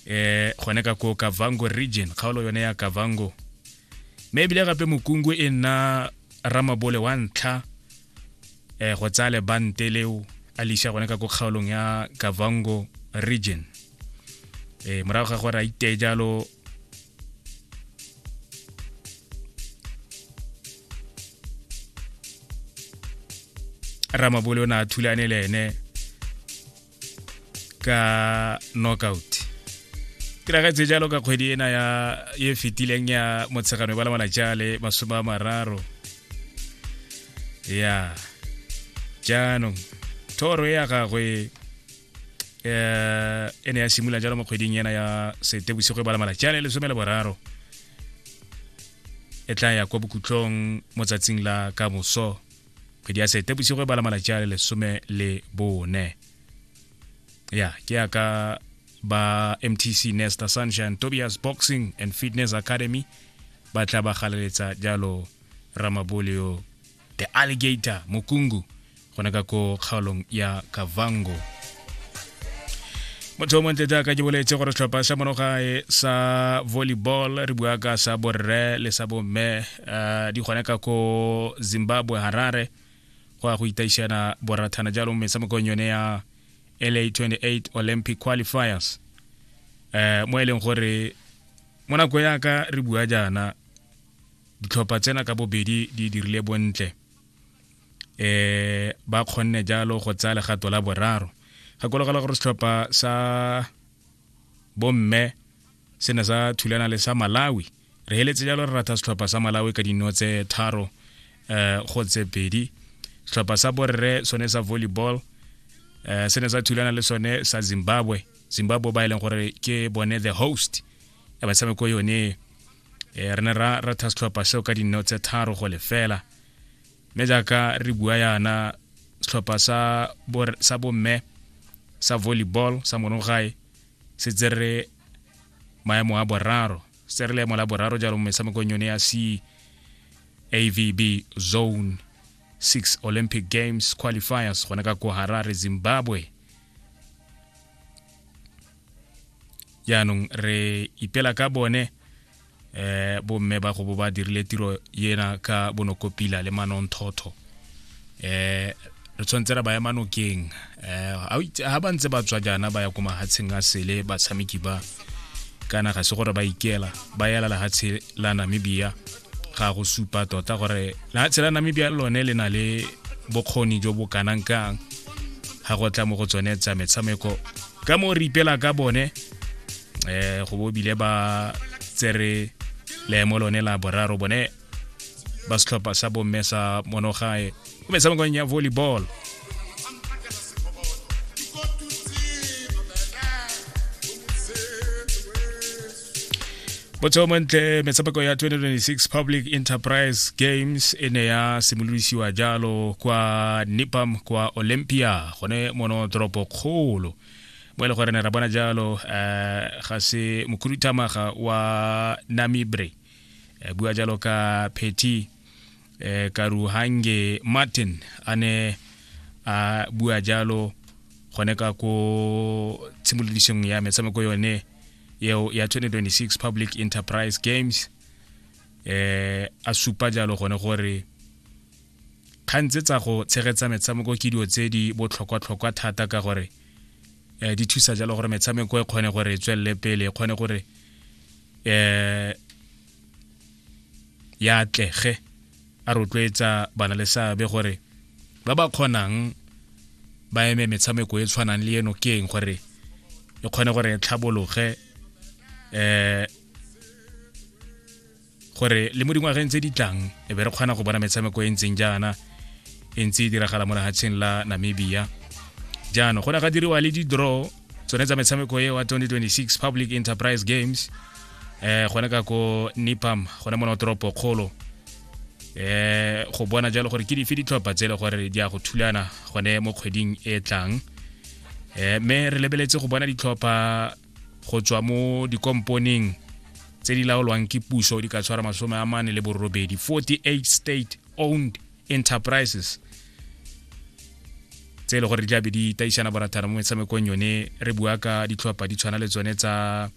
eh gone ka ko kavango region kgaolo yone ya kavango mme ebile gape mokungwe e nna ramabole wa ntlha eh go tsaya lebante leo a lisa gone ka ko kgaolong ya kavango region eh morago ga gore a iteye jalo ramabole o ne a thulane le ene ka knockout tiragetse jalo ka kgwedi ena ya e fetileng ya motshegano ba lamana jale masome a mararo ya jaanong thoro e ya gagwe um e ne ya simolola jalo mo kgweding ena ya setebosigo e balamala jale lesome le boraro e tla ya kwa bokhutlong mo tsatsing la kamoso kgwedi ya sete bosigo e bala malatsi a le lesome le bone ya ke yaka ba mtc nesta sunshine tobias boxing and fitness academy ba tla ba galeletsa jalo ramaboleo the alligator mokungu gona ka ko kgaolong ya kavango motho o montle jaaka ke boletse gore setlhopha sa monogae sa volleyball re bua ka sa borre le sa bomme um di gone ka ko zimbabwe harare go ya go itaišana borathana jalo mo metshamekong yone ya la 28 olympic qualifiers um mo e leng gore mo nako yaka re bua jaana ditlhopha tsena ka bobedi di dirile bontle eh ba kgonne jalo go tsaya legato la boraro gakologela gore setlhopha sa bomme se ne sa thulana le sa malawi re heletse jalo re ratha setlhopha sa malawi ka dino tse tharo eh go tse pedi setlhopha sa borre sone sa volleyball eh se ne sa thulana le sone sa zimbabwe zimbabwe ba e leng gore ke bone the host ya batshameko yone eh, re ne ra ratha setlhopha seo ka dino tse tharo go lefela mme jaaka re bua yana setlhopha sa bomme sa volleyball sa monogae se tsere maemo a boraro se re leemo la boraro jalo mo metshamekong yone ya c avb zone 6 olympic games qualifiers gone ka ko harare zimbabwe jaanong re ipela ka bone eh bomme ba go bo ba dirile tiro yena ka bonokopila le manonthotho eh re tshwanetse ra ba ya manokeng eh ha ba ntse ba tswa jana ba ya ko mahatsheng a sele batshameki ba kana ga se gore ba ikela ba yela lehatshe la namibia ga go supa tota gore lehatshe la namibia lone le na le bokgoni jo bo kanang kang ga go tla mo go tsone tsa metshameko ka mo re ipela ka bone eh go bo bile ba tsere leemo lone la boraro bone ba setlhopha sa bomme sa monogae o metshamekong ya volleyball botsheo montle metshameko ya 2026 public enterprise games e ne ya simolodisiwa jalo kwa nipam kwa olympia gone mono toropo kgolo mo e le gore ne ra bona jalo um ga se mokhuduthamaga wa namibre um bua jalo ka peti um karuhange martin a ne a bua jalo gone ka ko tshimolodisong ya metshameko yone eo ya 2026 public enterprise games eh a supa jalo gone gore kgang tse tsa go tshegetsa metshameko ke dilo tse di botlhokwa-tlhokwa thata ka gore um di thusa jalo gore metshameko e kgone gore e tswelele pele e kgone gore um ya atlege a rotloetsa bana le seabe gore ba ba kgonang ba eme metshameko e tshwanang le eno ke eng gore e kgone gore e tlhabologe um gore le mo dingwageng tse di tlang e be re kgona go bona metshameko e ntseng jaana e ntse e diragala mo lehatsheng la namibia jaanong go ne ga diriwa le di-draw tsone tsa metshameko e wa 2026 public enterprise games eh gone ka ko nipam gone mo toropo kgolo eh go bona jalo gore ke dife ditlhopha tse e le gore di a go thulana gone mo kgweding e tlang eh me re lebeletse go bona ditlhopha go tswa mo dikomponeng tse di laolwang ke puso di ka tshwara masome a mane le borobedi 48 state owned enterprises tse e le gore di tlabe di taisana borathana mo metshamekong yone re bua ka ditlhopha di tshwana le tsone tsa